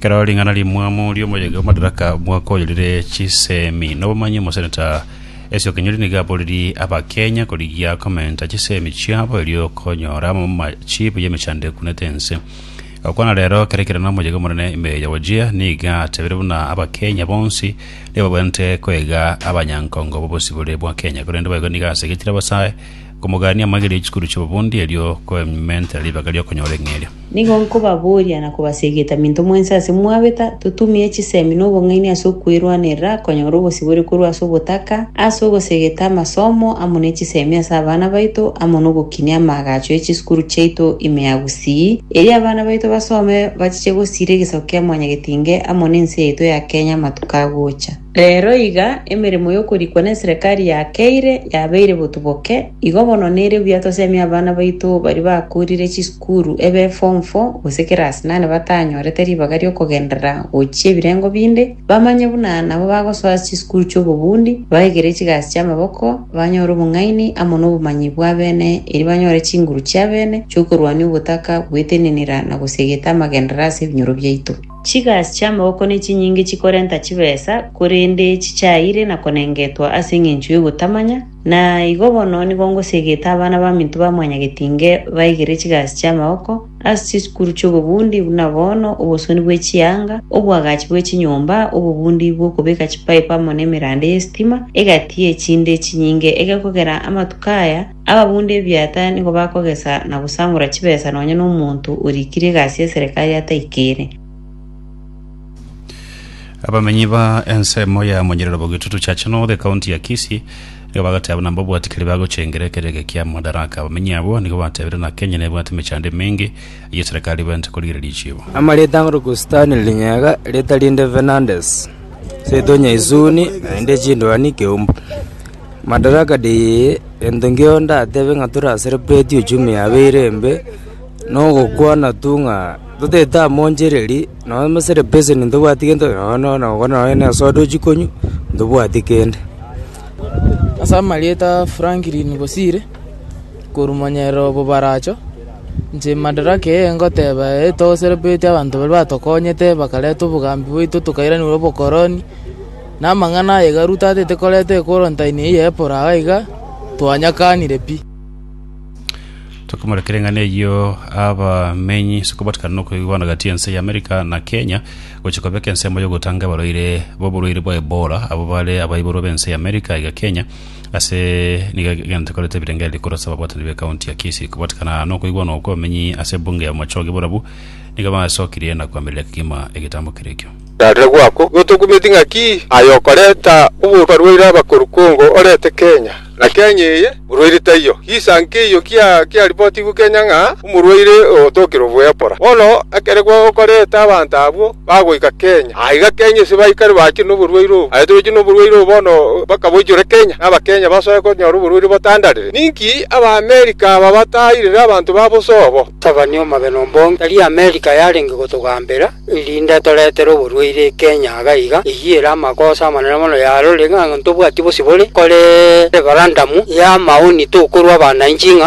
Kero ring'ana rimwamo riomoyega omadaraka mwaka oyo rire chisemi nobomanyi omoseneta Esio Kinyuri niga aboriri abakenya korigia komenta chisemi chiabo erio konyora machibu y'emechando ekunete ense okwana rero kere kere nomoyega omonene ime ya wajia niga atebire buna abakenya bonsi nigo babwenerete koiga abanyankongo bobosibore bwa kenya korende boigo nigo asegetire abasae Komogania amagera ye chikuru chi'obobundi, erio koementere ribaga ri'okonyora eng'eria. Nigo nkobaboria na kobasegeta minto mwensi ase mwabeta, totumie chisemi na obong'aini ase okwerwanerera konyora obosibore korwa ase obotaka, ase ogosegeta amasomo amo ne chisemi ase abana baito, amo nogokinia amaagacho ye chisukuru chiaito ime ya Gusii, erio abana baito basome bachiche gosiira egesaku kia Mwanyagetinge amo ne ense yaito ya Kenya amatuko agocha. Reero iga emeremo y'okorikwa n'eserekari ya Keire yabeire botuboke, igo bono nere buya tosemie abana baito baria bakoorire chisukuru ebe Form Four gose Class Nane batanyorete ribaga ri'okogenderera gochia ebirengo binde, bamanye buna nabo bagosoa ase chisukuru chi'obobundi, baegere chigasi chi'amaboko, banyore obong'aini amo nobomanyi bw'abene, erio banyore chinguru chi'abene chi'okorwania obotaka bw'etenenera na gosiegeta amagenderera ase ebinyoro biaito. Chigasi chi'amaboko nechinyinge chikorenta chibesa, korende chichaeire na konengetwa ase engencho y'ogotamanya, na igo bono nigo ngosegete abana baminto ba mwanyagetinge baigere chigasi chi'amaboko ase chisukuru chi'obobundi buna bono, obosoni bwe chianga, oboagachi bwe chinyomba, obobundi bw'okobeka chipaipu amo nemerande y'esitima, egati y'echinde chinyinge egekogera amatuko aya, Ababunde ebiaata nigo bakogesa na gosangora chibesa nonya nomonto orikire egasi y'eserekari ataikire. Abamenyi ba ensemo ya Monyerero Bogitutu Church North ekaunti ya Kisii nigo bagoteba buna mbabwati keri bagochengera ekero eke kia Madaraka. Abamenyi abwo nigo batebire buna Kenya nebwate emechando emenge eyio eserekari ebwenerete korigereria echibo. Amarita ang'oro ko Stanley Linyega, rita rinde Fernandes, Seito Nyaisuni, naende chindwani Keumbu. Madaraka ndeyie, gento nkio ndatebe ng'a tore ase repreti uchumi yaabo ere embe, nogokwana tu ng'a totaete amo onchereri, nonya ase rebeseni ntobwati gento, nonya nonya na ogokwana nonya na esoda ochie konywa, ntobwati kende. Ase amarieta Franklin Bosire, korwa omonyereri o Bobaracho, inche madaraka eye ngoteba eye togoseripreti abanto baria batokonyete bakareta obogambi bwaito tokairaneria obokoroni. Namang'ana aye Garu tatete koreta ekorontaini eye y'eporo agwo iga twanyakanire pi. Tokomorekera eng'ana eyio abamenyi ase okobatikana nokoigwa bono gati y'ense y'America na Kenya gochia kobeka ensemo y'ogotanga abarwaire b'oborwaire bwa Ebola abwo bare abaiborwa b'ense y'America iga Kenya ase nigo egento ekorete ebirengererio korwa ase ababwatani b'ekaunti ya Kisii. Kobatikana nokoigwa okwo abamenyi ase ebunge ya Bomachoge borabu nigo basokirie na koamerera kegima egetambo keria ekio. Rarira gwakwo gotokumeti ng'aki aye okoreta oboruoti barwaire abakoru kongo orete Kenya, na Kenya eye orwaire taiyo. Gisa nkeiyo kiaripotigwe Kenya ng'a omorwaire ogotokire oboepora. Bono ekere gokorete abanto abwo bagoika Kenya, aiga Kenya ase baikare bachire noborwaire obo. Aye tobechire noborwaire obo bono mpaka boichore Kenya, na Abakenya basoe konyora oborwaire botandarire. Ninki Abaamerika aba batairire abanto babo sobo? Gavana o Mabena Ombong tari Amerika yarenge gotogambera, erinde atoretere oborwaire Kenya iga iga. Eyio ere amakosa amanene mono yarorire ng'a ntobwati bosibore. Kore referandamu y'amaoni tokorwa abanainchi ng'a